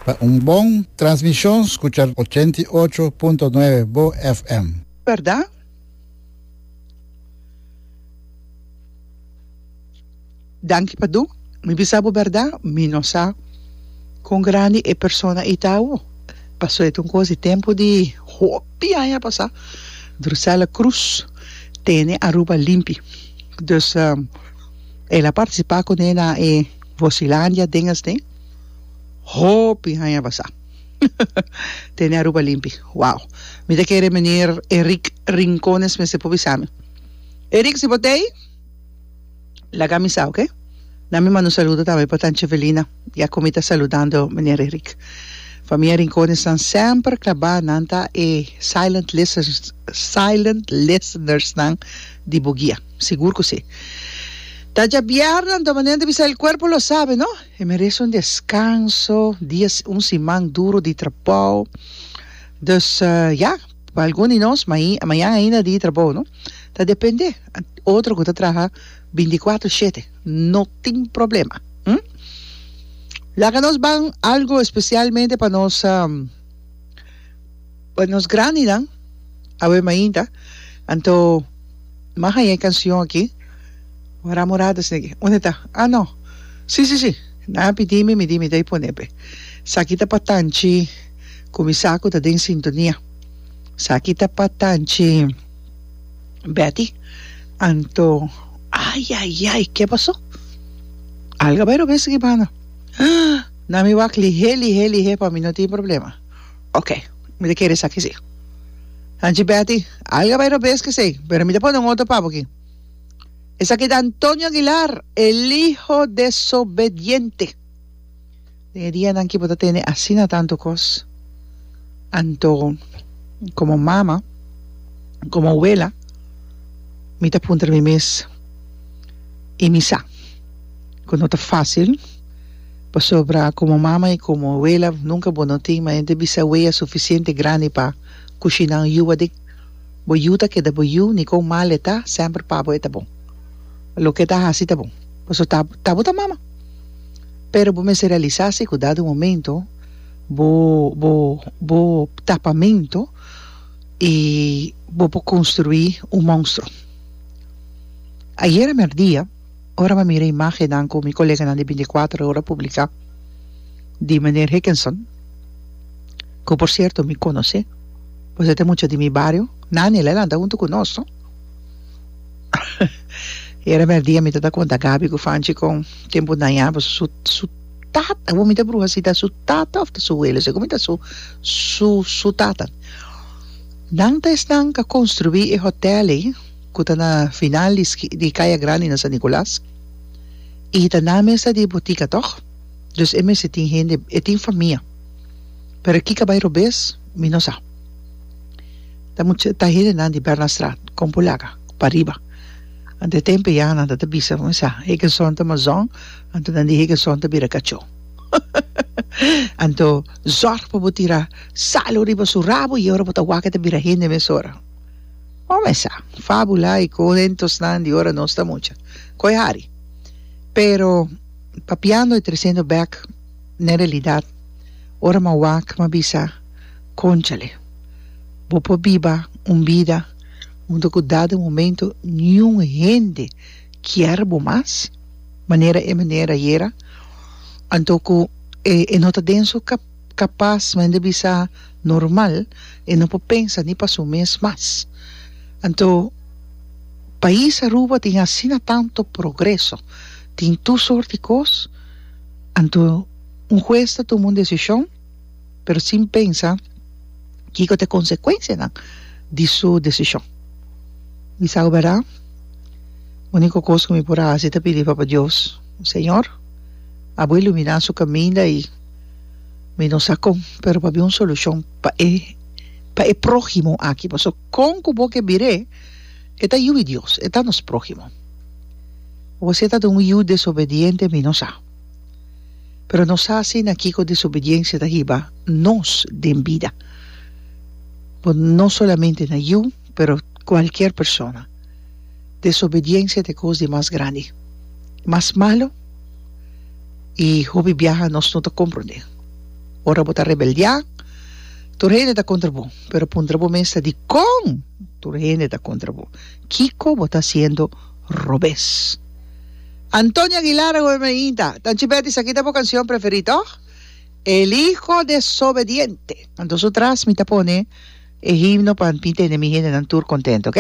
Pa un bon transmishon skucha ochenta i ocho punto nuebe bo FM. Bèrda? Danki Padu. Mi bisa bo bèrda, mi no sa kon grandi e persona ei ta awo. Pasó e ta un kos di tempu di hopi aña pasá. Drusella Cruz tene Aruba limpi. Dus el a partisipá kuné na e. Bosilandia den esne hopi haña basa tene Aruba limpi wow mi ta kere Meneer Erick Rincones mester por bisa mi Erick si bo ta ey laga mi sa oke na mi manda un saludo tambe pa Tanchi Evelina ya komi ta saludando Meneer Erick famia Rincones nan semper klabá nan ta e silent listeners silent listeners nan di bo guia. Sigur cu si. Ta dja biarda anto manera di bisa el cuerpo lo sabe no. E merece un descanso, dia un siman duro di trabao. Dus ya, pa algun di nos mai mañana ainda dia di trabao no. Ta depende. Otro cu ta traha binticuatro shete no tin problema. Hm? Laga nos ban algo especialmente pa nos. Pa nos grandinan awe mainta anto mag haya e cancion aki wan Ramo Rada snegi unda ta ah no si si si nan a pidi mi mi di mi ta e pone pe saki ta pa tanchi cu mi sa cu ta den sintonia saki ta pa tanchi Betty anto ayayay ke paso alga bay robes aki mano ah na mi wak lihe lihe lihe pa mi no tin problema. Ok, mi ta kere esaki sí. Hanchi Betty, Alga bay robes kesey, pero mi ta pone un otro pap aki. Esaki ta Antonio Aguilar, el hijo desobediente. Den e dianan ki bo ta tene asina tanto kos. Anto, como mama, como awela, mi ta puntra mi mes, y mi sa cu no ta fácil. Pasobra komo mama i komo awela nunka bo no tin mayente bisaweya sufisiente grandi pa kushi nan yuwa di bo yu ta keda bo yu ni kon mal e ta semper pa bo e ta bon loke e ta hasi ta bon paso ta ta bo ta mama pero bo mester realisa si ku dado momento bo bo bo tapamento i bo por konstruí un monstro ayera merdia. Ora mi mira imágennan ku mi koleganan di binticuatro ora publiká di Meneer Hickenson, ku por sierto mi konos'é, pues e ta mucha di mi bario, Nani, el a lanta huntu ku nos, no? I era merdía mi ta ta konta Gabi ku Fanchi kon tempu naña pues su su tata, awor mi ta bruha si ta su tata òf ta su wele, segun mi ta su su su tata. Nan ta esnan k'a konstruí e hòtèl ei. ku ta na final di ski di Kaya Grandi na San Nicolas i hita nan mes ta di botika tòg dus e mester tin hende e tin famia pero kiko a bai robes mi no sa ta mucha ta hendenan di Bernardstraat kon por laga pariba anto e tempe ya nan ta ta bisa mi sa Hegerson ta mazòn anto nan di Hegerson ta bira kachó anto zòrg pa bo tira salo riba su rabo i ora bo ta wak e ta bira hende mesora. Bo mesa, fábula i kuentosnan di ora nos ta mucha. Koe hari. Pero papiando i tresendo bèk n'e realidat, ora m'a wak m'a bisa, Kònchale, bo por biba un bida unda ku dado momento niun hende kier bo mas manera e manera yera, anto ku e no ta den su. Kapas mende bisa normal e no por pensa ni pa su mes mas. Anto pais Aruba tin asina tanto progreso, tin tur sort di kos, anto un hues ta tuma un desishon pero sin pensa kiko ta e konsekuensianan di su desishon. Mi sa ku berda uniko kos ku mi por hasi ta pidi Papa Dios, Señor, abo iluminá su kaminda i. Mi no sa con, pero pabia un solucion pa e pa e prohimo aki, paso con cu bo ke bire e ta yu i Dios, e ta nos prohimo. Wosé ta den un yu desobediente mi no sa, pero no sa asina kico desobediencia ta hiba nos den bida, bo no solamente na yu, Pero cualkier persona. Desobediencia ta e cos di mas grandi, mas malo y hopi biaha nos no ta comprende. Ora bo ta rebeldia, tur hende ta contra bo. Pero puntra bo mes ta dicon tur hende ta contra bo? Kico bo ta haciendo robes? Antonio Aguilar a goberna ainda. Tanchi Betty, esaki ta bo cancion preferi, toch? E liho desobediente. Anto su tras mi ta pone e himno pa mi tene mi hendenan tur contento, ok?